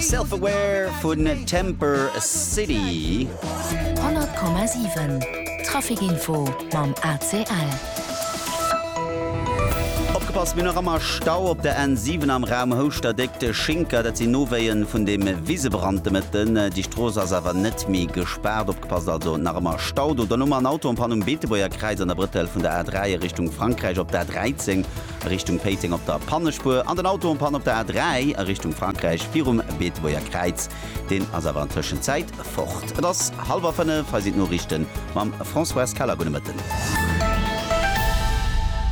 Self Aware vun Temper City. 100,7 Trafikinfo mam ACL. Opgepasst, mir hunn nach ëmmer Stau op der N7 am Raum Houschter-Déck. De Schinker, dat sinn Nowéie vun deem Wisebrand de Mëtten. Déi Strooss ass awer net méi gespaart. Opgepasst also, nach ëmmer Stau do. Dann hu mer en Auto en Panne um Beetebuerger Kräiz an der Brëttel vun der A3 a Richtung Frankräich op der A13. a Richtung Péiteng op der Pannespuer an den Auto en panne op der A3 a Richtung Frankräich virum Beetebuerger Kräiz. Deen ass awer an Tëschenzäit fort. Et ass hallwer 5, hei sinn d'Noriichte mam Françoise Keller. Gudde Mëtten.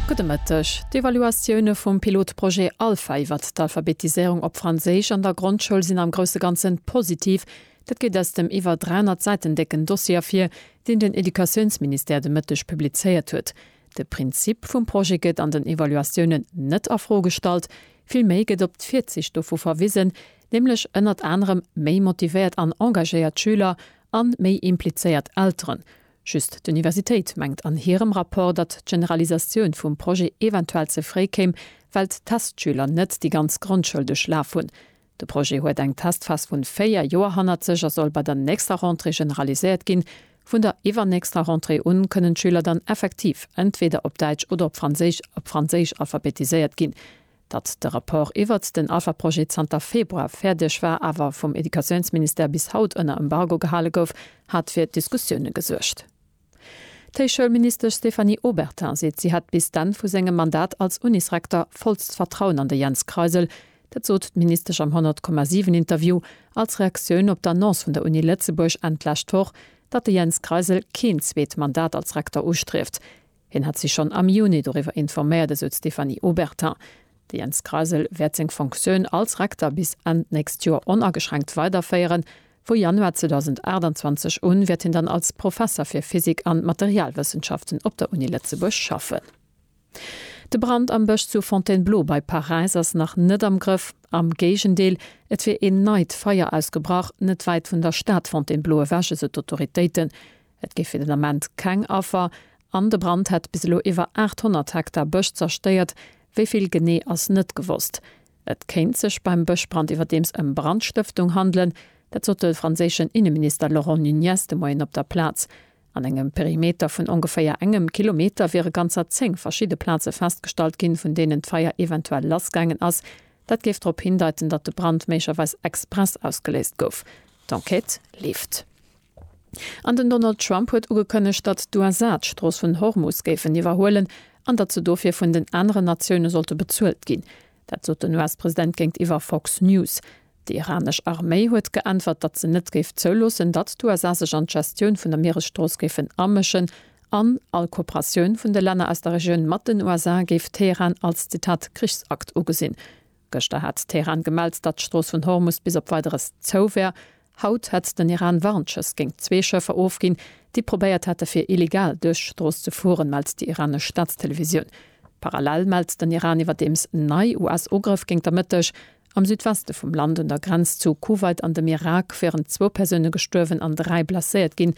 Gudde Mëtteg. D'Evaluatioune vum Pilotprojet Alpha iwwer d'Alphabetiséierung op Franséisch an der Grondschoul sinn am grousse Ganze positiv. Dat geet aus dem iwwer 300 Säiten décken Dossier ervir, deen den Educatiounsministère de Mëtteg publizéiert huet. De Prinzip vum Projet gëtt an den Evaluatiounen net a Fro gestallt, villméi gëtt op d'Virzicht dovu verwisen, nämlech ënnert anerem méi motivéiert an engagéiert Schüler a méi implizéiert Elteren. Just d'Universitéit mengt an hirem Rapport, datt d'Generalisatioun vum Projet eventuell ze fréi kéim, well d'Testschüler net déi ganz Grondschoul duerchlaf hunn. De Projet huet eng Testphas vun 4 Joer hannert sech a soll bei der nächster Rentrée generaliséiert ginn. Vun der iwwernächster Rentrée un kënnen d'Schüler dann effektiv entweder op Däitsch oder op Franséisch op Franséisch alphabetiséiert ginn. Datt de Rapport iwwert den Alpha-Projet zanter Februar fäerdeg war, awer vum Educatiounsministère bis haut ënner Embargo gehale gouf, hat fir Diskussioune gesuergt. D'Héichschoulministesch Stéphanie Obertin seet, si hätt bis d'Enn vu sengem Mandat als Unisrektor vollst Vertrauen an de Jens Kreisel. Dat sot d'Ministesch am 100,7 Interview als Reaktioun op d'Annonce vun der Uni Lëtzebuerg Enn d'lescht Woch, datt de Jens Kreisel keen zweet Mandat als Rektor ustrieft. Hien hätt si schonn am Juni doriwwer informéiert, esou d'Stéphanie Obertin. De Jens Kreisel wäert seng Fonctioun als Rektor bis Enn d'nächst Joer onageschränkt weiderféieren. Vu Januar 2028 un wäert hien dann als Professer fir Physik an Materialwëssenschaften op der Uni Lëtzebuerg schaffen. De Brand am Bësch zu Fontainebleau bei Paräis ass nach net am Grëff. Am Géigendeel, et wier een neit Feier ausgebrach, net wäit vun der Stad Fontainebleau ewech, esou d'Autoritéiten. Et géif fir den Ament keng Affer an de Brand hätt bis elo iwwer 800 Hektar Bësch zerstéiert. Wéi vill genee ass net gewosst. Et kéint sech beim Bëschbrand iwwerdeems ëm Brandstëftung handelen. Dat sot de franséischen Inneminister Laurent Nunez de Moien op der Plaz. An engem Perimeter vun ongeféier engem Kilometer wiere ganzer zéng verschidde Plaze festgestallt ginn, vun deenen d'Feier eventuell lassgaangen ass. Dat géif drop hindeiten, datt de Brand méiglecherweis express ausgeléist gouf. D'Enquête leeft. An den Donald Trump huet ugekënnegt, datt d'USA d'Strooss vun Hormus géifen iwwerhuelen an datt se dofir vun den aneren Natioune sollte bezuelt ginn. Dat sot den US-President géintiwwer Fox News. Déi iranesch Arméi huet geäntwert, datt se net géif zouloossen, datt d'USA sech an d'Gestioun vun der Mieresstrooss géifen amëschen an all Kooperatioun vun de Länner aus der Regioun mat den USA géif Teheran als, Zitat, Krichsakt ugesinn. Gëschter hat Teheran gemellt, datt d'Strooss vun Hormus bis op Weideres zou wär. Haut hätt den Iran Warnschëss géint zwee Schëffer ofginn, déi probéiert hätte fir illegal duerch d'Strooss ze fueren, mellt déi iranesch Staatstelevisioun. Parallel mellt den Iran iwwerdeems nei US-Ugrëff géint der Mëtteg. Am Südweste vum Land un der Grenz zu Kuwait an dem Irak wieren zwou Persoune gestuerwen an dräi blesséiert ginn.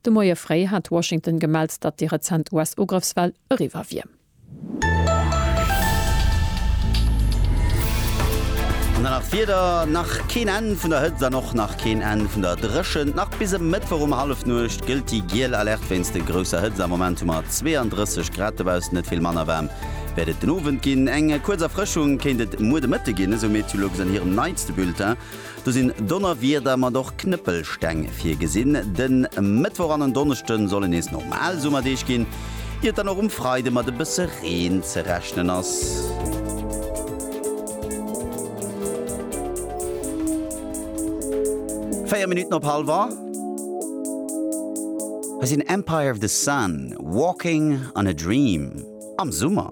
De Moie fréi hat Washington gemellt, datt déi rezent US-Ugrëffswell eriwwer wier. An dann nach d'Wieder, Nach keen Enn vun der Hëtzt an och nach keen Enn vun der Dréchent. Nach bis e Mëttwoch um Hallefnuecht gëllt déi giel Alerte wéinst de grousser Hëtzt. Am Moment hu mer 32 Grad dobaussen, net vill manner waarm wäert et den Owend ginn. Eng kuerz Erfrëschung kéint et muer de Mëtte ginn, esou Meteolux an hirem neitste Bulletin. Do sinn Donnerwieder mat och Knëppelsteng virgesinn. De Mëttwoch an en Donneschde solle nees normal Summerdeeg ginn, ier et dann och um Freide mat e bësse Reen ze rechnen ass. Véier Minutten op hallef a. Hei sinn Empire of the Sun, Walking on a Dream am Summer.